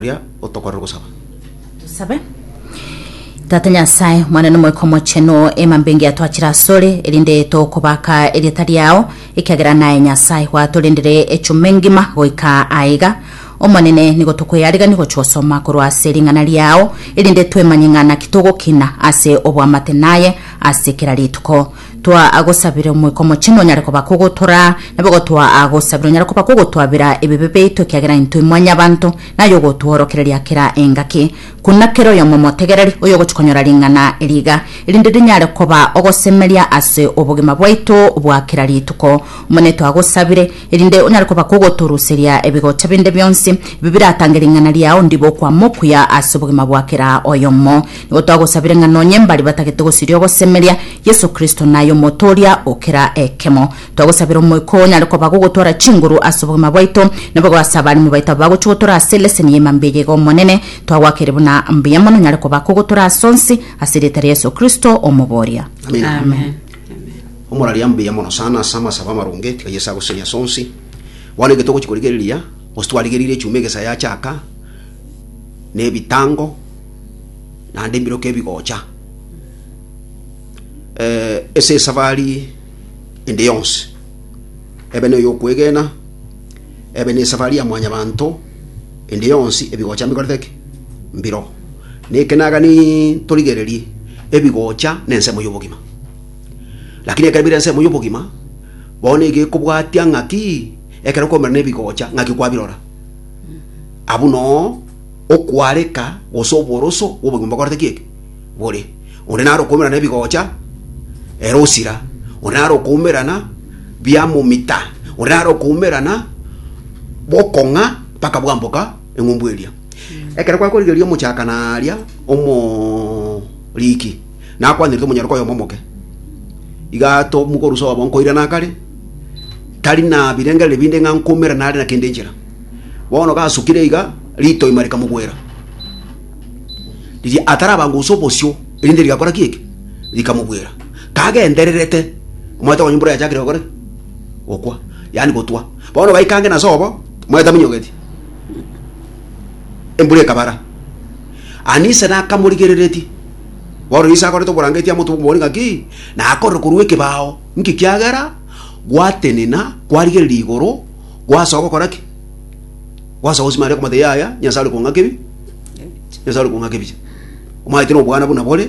Oria otokorera ogosaba. Tosabe. Tata Nyasae, mwane n'Omoika Omochenu, emambinga yatwachire asore, erinde tokobaka erieta riao, ekiagera naye Nyasae gwatorendire echuma engima goika aiga. Omonene, nigo tokweyarigani gochia gosoma korwa ase ring'ana riao, erinde twemanye ng'a naki togokina ase oboamate naye ase kera rituko. Twaagosabire Omoika Omochenu onyare koba kogotora, nabo gotoaagosabira onyare koba kogotwabera ebibe biaito ekiagera intwe mwanyabanto, naye ogotworokereria kera engaki, kona kera oyomo omotegereri, oyogochia konyora ring'ana eria iga, erinde rinyare koba ogosemeria ase obogima bwaito bwa kera rituko. Omonene twagosabire, erinde onyare koba kogotoruseria ebigocha binde bionsi, ebi biratange ring'ana riao ndibe okwama okuya ase obogima bwa kera oyomo. Nigo twagosabire ng'a nonye mbari batagete gosiria ogosemeria Yeso Kristo na aye omoto oria o kera ekemo. Twagosabire Omoika oo onyare koba gogotwara chinguru ase obogima bwaito, na boigo ase abaremi baito aba bagochia gotora ase eleseni y'ima mbuya iga Omonene, twagoakeire buna mbuya mono onyare koba kogotora ase onsi, ase erieta ria Yeso Kristo, Omobooria. Amina. Amen. Omoraria mbuya mono sana ase amasabo amaronge, tiga Yeso agosesenie ase onsi. Bono ege togochia korigereria, gose twarigereire echuma egesa yachaka, na ebitango, naende ebiroka ebigocha eh, ase esafari ende yonsi ebe noyo okwegena ebe ne esafari ya mwanyabanto ende yonsi ebigocha mbikorete ki mbiro nekenagani torigererie ebigocha na ensemo y'obogima lakini ekero bire ensemo y'obogima bono iga ekobwatia ng'aki ekero komera nebigocha ng'aki kwabirora abwo noo Okwareka gose oboroso bw'obogima bokorete ki eke? Bore. Onde naro okoumerana ebigocha, ere osira. Onde naro okoumerana biamomita. Onde naro okoumerana bokong'a mpaka bwamboka eng'umbu eria. Ekero gwakorigereria omochakana aria omoriki, nakwanerete omonyororo oyomo omoke. Iga tomukorusa obo nkoirana akare, tari na birengererio binde ng'a nkoumerana are na kende enchera. Bono gasukire iga, ritoima rikamogwera, riria atarabanga gose obosio, erinde rigakora ki eke? Rikamogwera. Kagendererete, omanyete onye mbura yachakire gokora ki? Gokwa, yaani gotwa. Bono baikange nase obo, omanyete aminyogetie, embura ekabara. Anise nakamorigereretie, bono riria ase akorete oborangeti amotube omobori ng'aki, nakorire korwa ekebao, inki kiagera gwatenena, kwarigereria igoro, Gwasoa gokora ki? Gwasoa gosima are okomotebia yaya, Nyasae are kong'aka ebi, Nyasae are kong'aka ebiya. Omanyete nobwana buna bore,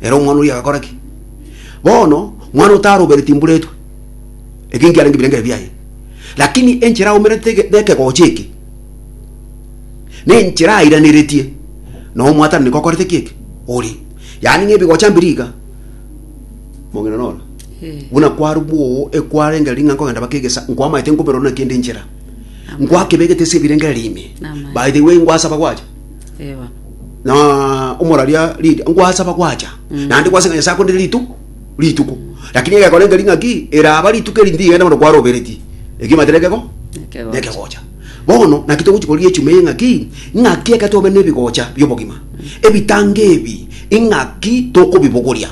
ere omwana oria agakora ki? Bono, mwana otarobere timburetwe, eke nkiarenge birengeri biaye. Lakini enchera aumerete ege- nekegocha eke, nenchera airaneretie, na omwatananeka okorete ki eke? Ori. Yaani ng'ebigocha mbiri iga. Mogenda nora? Buna kwarwwa oo ekwarengera ring'ana nkogenda bakegesa, nkwamaete nkoberora buna kende enchera. Nkwakebegete ase ebirengera riime. Amen. By the way, nkwasaba gwacha. Eh, bono. na omoraria Lydia nkwasaba gwacha naende kwaseng'ana nyasae akonde rituko rituko lakini egekorenge ring'aki eraba rituko eri ndigenda bono kwaroberetie ekio matere ekego Ekegocha. nekegocha bono naki togochi koria echuma eye ng'aki ng'aki eke tobe nebigocha biobogima ebitango ebi ing'aki tokobibogoria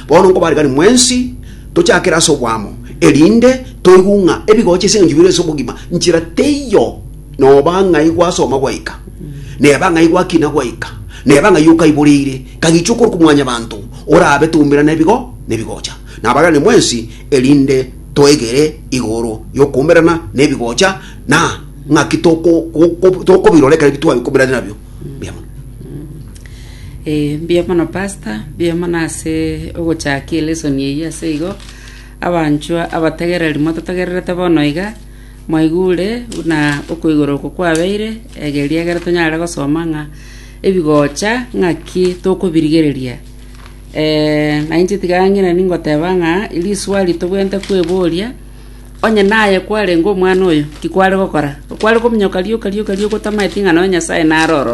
Bono nkobarekani mwensi tochakere ase oboamo, erinde toigwe ng'a ebigocha ase engencho bire ase obogima nchera teiyo, noba ng'a igwasoma gwaika, neba ng'a igwakina gwaika, neba ng'ai okaiboreire, kagichwa okorwa kwa Mwanyabanto, orabe toumera nebigo nebigocha. Nabarekani mwensi erinde toegere igoro y'okoumerana nebigocha, na ng'aki tokobirora ekero twabikumera nabio. Mbuya mono. Eh, mbuya mono pastor, mbuya mono ase ogochakia elesson eyio ase igo. Abanchwa abategereri mototegererete bono iga, mwaigure buna okoigora oko kwabeire, egeria egere tonyare gosoma ng'a ebigocha ng'aki tokobirigereria. Eh, na inche tiga ng'ina ningoteba ng'a riswali tobwenerete kweboria, onye naye kwarenge omwana oyo, ki kware gokora? Kware kominyoka rioka rioka rioka otamaeti ng'a nonya Nyasaye naro ororo.